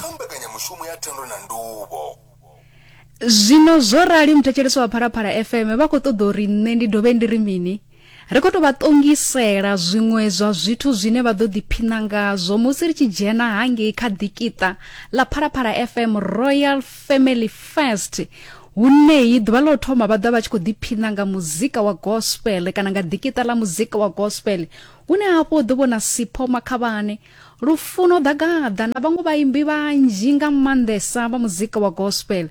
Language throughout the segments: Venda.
kha mbekanyamushumo ya thendo na nduvho zwino zwo rali muthetshelesi wa phalaphala fm vha khou ṱoḓa uri nṋe ndi dovhe ndi ri mini ri khou tou vha ṱongisela zwiṅwe zwa zwithu zwine vha ḓo ḓiphina ngazwo musi ri tshi dzhena hangei kha ḓikiṱa ḽa phalaphala fm royal family first huneyi ḓuvha ḽo thoma vha ḓa vha tshi khou ḓiphina nga muzika wa gospel kana nga ḓikiṱa ḽa muzika wa gospel hune hafho ḓo vhona sipho makhavhane Lufuno Ḓagaḓa na vhaṅwe vhaimbi vhanzhi nga maanḓesa vha muzika wa gospel.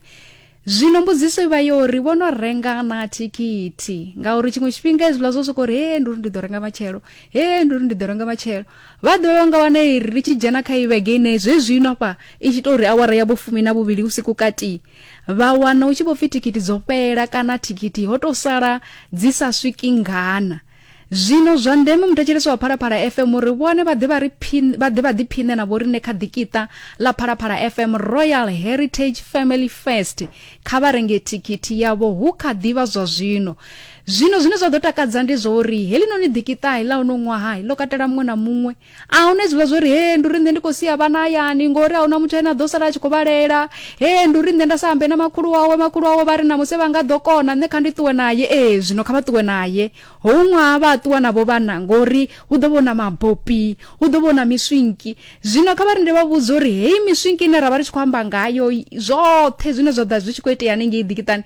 Zwino mbudziso i vha yo ri vho no renga na thikhithi ngauri tshiṅwe tshifhinga hezwiḽa zwo sokou ri he ndi uri ndi ḓo renga matshelo he ndi uri ndi ḓo renga matshelo vha ḓo yo nga wana iri ri tshi dzhena kha ivhege ine zwezwino afha i tshi tou ri awara ya vhofumi na vhuvhili vhusiku katii vha wana u tshi vho pfi thikhithi dzo fhela kana thikhithi ho tou sala dzi sa swiki ngana Zwino zwa ndeme muthetshelesi wa Phalaphala FM uri vhone vha ḓe vha ri phin- vha ḓe vha ḓiphiṋe na vhoriṋe kha ḓikiṱa ḽa Phalaphala FM Royal Heritage Family Fest kha vha renge thikhithi yavho hu kha ḓi vha zwa zwino. Zwino zwine zwa ḓo takadza ndi zwa uri heḽinoni ḓikiṱa ḽa uno ṅwaha ḽo katela muṅwe na muṅwe a huna hezwiḽa zwo ri he ndi uri nṋe ndi khou sia vhana hayani ngori a huna muthu ane a ḓo sala a tshi khou vhalela he ndi uri nṋe nda sa ambe na makhulu wawe makhulu wawe vha ri na musi vha nga ḓo kona nṋe kha ndi ṱuwe naye ee zwino kha vha ṱuwe naye hou ṅwaha vha a ṱuwa navho vhana ngori hu ḓo vhona mabopi hu ḓo vhona miswinki zwino kha vha ri ndi vha vhudza uri heyi miswinki ine ra vha ri tshi khou amba ngayo zwoṱhe zwine zwa ḓa zwi tshi khou itea hanengei ḓikiṱani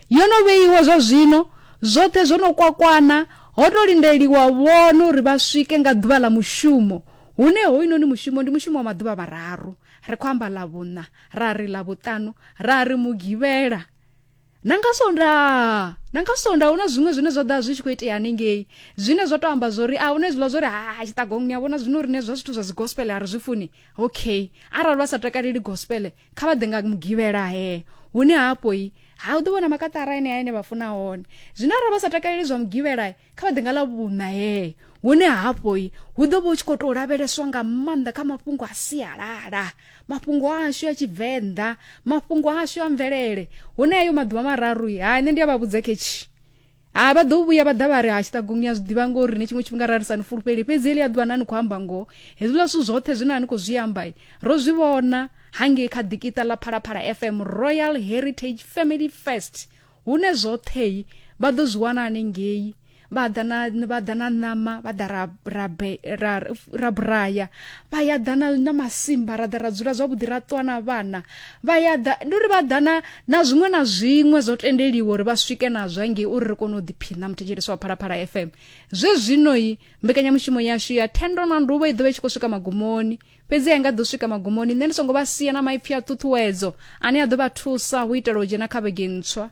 yo no vheiwa zwa zwino zwoṱhe zwo no kwakwana Ho tou lindeliwa vhone uri vha swike nga ḓuvha ḽa mushumo, hune hoyunoni mushumo ndi mushumo wa maḓuvha vhararu, ri khou amba Ḽavhuṋa, ra ri Ḽavhuṱanu, ra ri Mugivhela, na nga Sonda. Na nga Sonda hu na zwiṅwe zwine zwa ḓa zwi tshi khou itea hanengei, zwine zwa tou amba zwo ri a hu na hezwiḽa zwo ri ha tshiṱagong ni a vhona zwino riṋe zwa zwithu zwa dzi gospele a ri zwi funi. Okay, arali vha sa takaleli gospele kha vha ḓe nga mugivhela he hune hafho-i ha u ḓo vhona makaṱara enea ene vha funa hone zwino arali vha sa takaleli zwa mugivhela kha vha ḓe nga ḽa vhuṋa he hune hafho-i hu ḓo vha hu tshi khou tou lavheleswa nga maanḓa kha mafhungo a sialala mafhungo ashu a tshivenḓa mafhungo ashu a mvelele hune ayo maḓuvha mararu-i ha nṋe ndi a vha vhudza khetshi ha vha ḓo vhuya vha ḓa vha ri ha tshiṱagu ni a zwi ḓivha ngori ni tshiṅwe tshifhinga ra ri sa ni fulufheli fhedzi heḽi a ḓuvha na ni khou amba ngoho hezwiḽa zwithu zwoṱhe zwine a ni khou zwi amba ro zwi vhona hangei kha ḓikiṱa ḽa phalaphala fm royal heritage family first hune zwoṱhei vha ḓo zwi wana hanengei vha ḓa na vha ḓa na ṋama vha ḓa ra ra ra ra buraya vha ya ḓa na na masimba ra ḓa ra dzula zwavhuḓi ra ṱwa na vhana vha ya ḓa ndi uri vha ḓa na Na zwiṅwe na zwiṅwe zwo tendeliwa uri vha swike nazwo ngei uri ri kone u ḓiphiṋa muthetshelesi wa phalaphala fm zwe zwino-i mbekanyamushumo yashu ya thendo na nduvho i ḓovha i tshi khou swika magumoni fhedzi a i nga ḓo swika magumoni nṋe ndi songo vha sia na maipfi a ṱhuṱhuwedzo ane a ḓo vha thusa hu itela u dzhena kha vhege ntswa